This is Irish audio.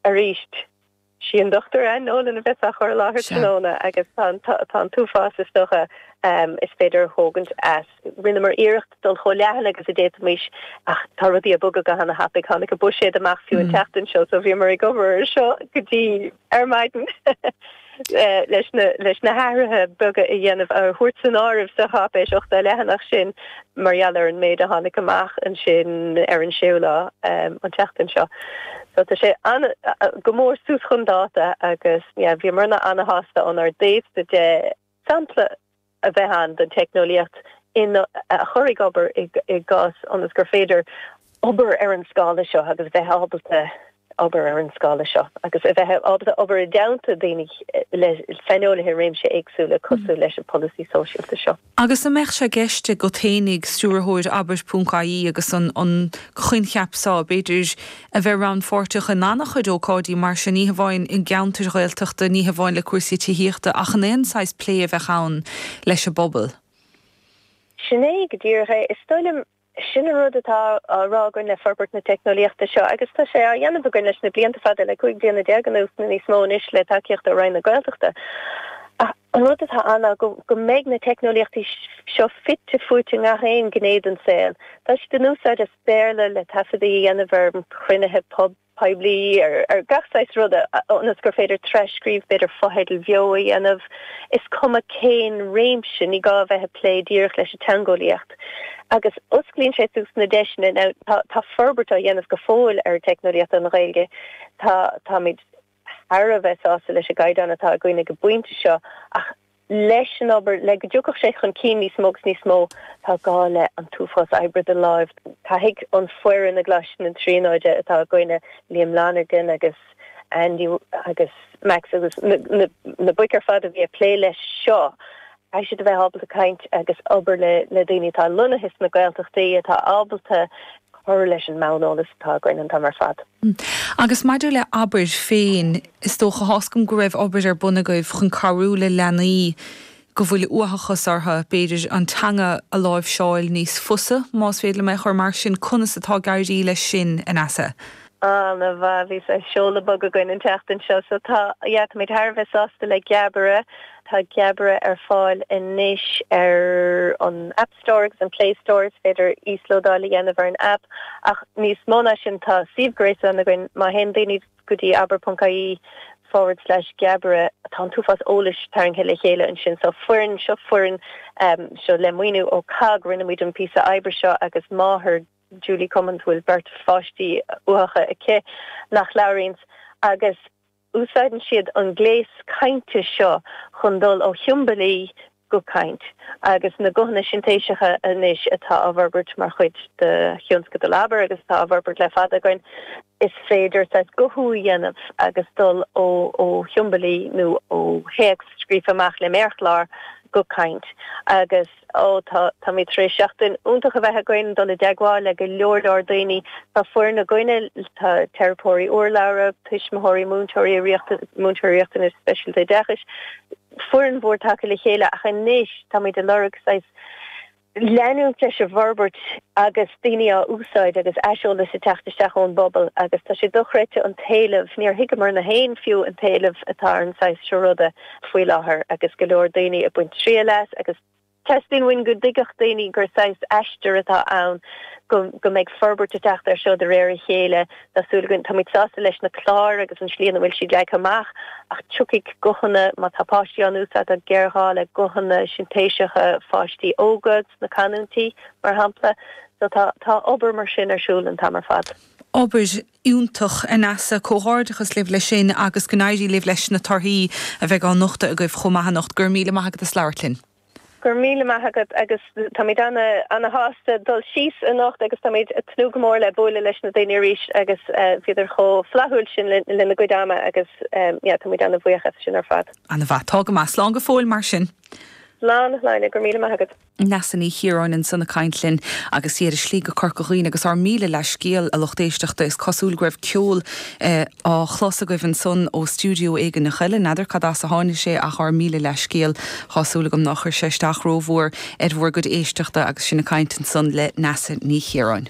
Arís, sí an Dr Anne Nolan a bheas á chur i láthair tráthnóna agus tá an t-uafás, is dócha, is féidir a thógaint as. Rinneamar iarracht dul chomh leathan agus a d'fhéadfaimis ach tá rudaí ag bogadh go han-tapaidh. Tháinig an buiséad amach fiú an tseachtain seo so bhíomar ag obair ar seo go dtí ar maidin. leis na hathruithe beaga a dhéanamh, a thabhairt san áireamh sa cháipéis ochtó leathanach sin, mar gheall ar an méid a tháinig amach ansin ar an séú lá an tseachtain seo. So tá sé go mór suas chun dáta agus bhíomar ana-shásta ónár dtaobhsa de sampla a bheith ann den teicneolaíocht a chur ag obair i gceart ionas gur féidir obair ar an scála seo agus bheith ábalta obair ar an scála seo agus a bheith ábalta obair i dteannta daoine le saineolaithe i réimsí éagsúla cosúil leis an polasaí sóisialta seo. Agus an mbeadh sé i gceist agaibh féinig tionscadal Abair.ie agus an coincheap seo, b'fhéidir, A bheith rannpháirteach in an-chuid ócáidí mar seo, ní hamháin i gceantair Ghaeltachta, ní hamháin le cúrsaí tithíochta, ach in aon saghas plé a bheadh ann leis an bpobal. Sin é go díreach é. Is dóigh liom, sin an rud atá á rá againn le forbairt na teicneolaíochta seo, agus tá sé á dhéanamh againn leis na blianta fada, le cúig bliana déag anuas nó níos mó anois le tacaíocht ó Roinn na Gaeltachta. Ach an rud atá ann ná go mbeidh na teicneolaíochtaí seo fite fuaite i ngach aon ghné den saol. Tá siad in úsáid sa Béarla le taifeadtaí a dhéanamh ar chruinnithe poiblí, ar gach saghas ruda, ionas gur féidir tras-scríobh, b'fhéidir fotheidil bheo a dhéanamh, is cuma cén réimse, ní gá a bheith ag plé díreach leis an teangeolaíocht. Agus osclaíonn sé suas na deiseanna. Now tá forbairt á dhéanamh go fóill ar an teicneolaíocht don Ghaeilge, táimid. thar a bheith sásta leis an gcaighdeán atá againn ag an bpointe seo ach leis an obair, le go dtiocfadh sé chun cinn níos mó agus níos mó, tá gá le an t-uafás oibre de láimh. Caithfidh an foireann i gColáiste na Tríonóide atá againne, Liam Lonergan agus Andy agus Max agus na boic ar fad a bhí ag plé leis seo, Caithfidh siad a bheith ábalta caint agus obair le le daoine atá lonnaithe sna Gaeltachtaí, atá ábalta cur leis an mbonn eolas atá againn an t-am ar fad. Agus maidir le hAbair féin, is dócha tá's agam go raibh obair ar bun agaibh chun cabhrú le leanaí go bhfuil uathachas orthu, b'fhéidir, an teanga a láimhseáil níos fusa, más féidir liom é a chur mar sin. Conas atá ag éirí leis sin, a Neasa? Ana mhaith. Bhí saghas seoladh bog againn an tseachtain seo so tá yeah, táimid thar a bheith sásta le Geabaire Tá Geabaire ar fáil anois ar an App Store agus an Play Store. Is féidir íoslódáil a dhéanamh ar an aip ach níos mó ná sin tá suíomh gréasáin againn. Má théann daoine go dtí abair ponc ie forward slash geabaire tá an t-uafás eolais tarraingthe le chéile ansin. Seo foireann, seo foireann, seo le maoiniú ó cogg rinne muid an píosa oibre seo agus máthair Julie Cummins a bhfuil beirt pháistí uathacha aici nach labhraíonns agus. Úsáideann siad an gléas cainte seo chun dul ó shiombailí go caint, agus na guthanna sintéiseacha anois atá á bhforbairt mar chuid de thionscadal abair agus atá á bhforbairt le fada againn, is féidir saghas guthú a dhéanamh agus dul ó shiombailí nó ó théacs scríofa amach le méarchlár go caint. Agus. Ó, tá, táimid tar éis seachtain iontach a bheith againn ag dul i dteagmháil le go leor leor daoine. Tá foireann againn, tá teiripeoirí urlabhra, tuismitheoirí, múinteoirí riachtanas, múinteoirí riachtanas speisialta oideachais, foireann mhór tagtha le chéile ach anois táimid ag lorg saghas leanúint leis an bhforbairt agus daoine á úsáid agus aiseolas ag teacht isteach ón bpobal agus tá sé dochreidte an t-éileamh, níor thuigeamar féin fiú an t-éileamh atá ar an saghas seo ruda. faoi láthair agus go leor daoine ag baint triail as agus teastaíonn uainn go dtuigfeadh daoine gur saghas aistear atá ann, go mbeidh forbairt ag teacht air seo de réir a chéile, tá súil againn. Táimid sásta leis na cláir agus an tslí ina bhfuil siad leagtha amach ach tiocfaidh guthanna, má tá páistí á n-úsáid, tá géarghá le guthanna sintéiseacha pháistí óga sna canúintí, mar shampla, so tá obair mar sin ar siúl an t-am ar fad. Obair Iontach a Neasa. Comhghairdeachas libh leis sin agus go n-éirí libh leis na torthaí a bheidh á nochtadh agaibh chomh maith anocht. Go raibh míle maith agat as labhairt linn. Go raibh míle maith agat agus táimid ana-shásta dul síos anocht agus táimid ag tnúth go mór le buaileadh leis na daoine arís agus bhíodar chomh flaithiúil sin lena gcuid ama agus táimid ana-bhuíoch as sin ar fad. Ana-mhaith. Tá go maith. Slán go fóill mar sin. Slán, a Shláine. Go raibh míle maith agat. Neasa Ní Chiaráin ansan ag caint linn agus í ar a slí go Corca Dhuibhne agus ár míle leathscéal, a lucht éisteachta, is cosúil go raibh ceol á chlos agaibh ansan ó stiúideo éigaineach eile, n'fheadar cad as a tháinig sé ach ár míle leathscéal, tá súil agam nár chuir sé isteach rómhór ar bhur gcuid éisteachta agus sinn ag caint ansan le Neasa Ní Chiaráin.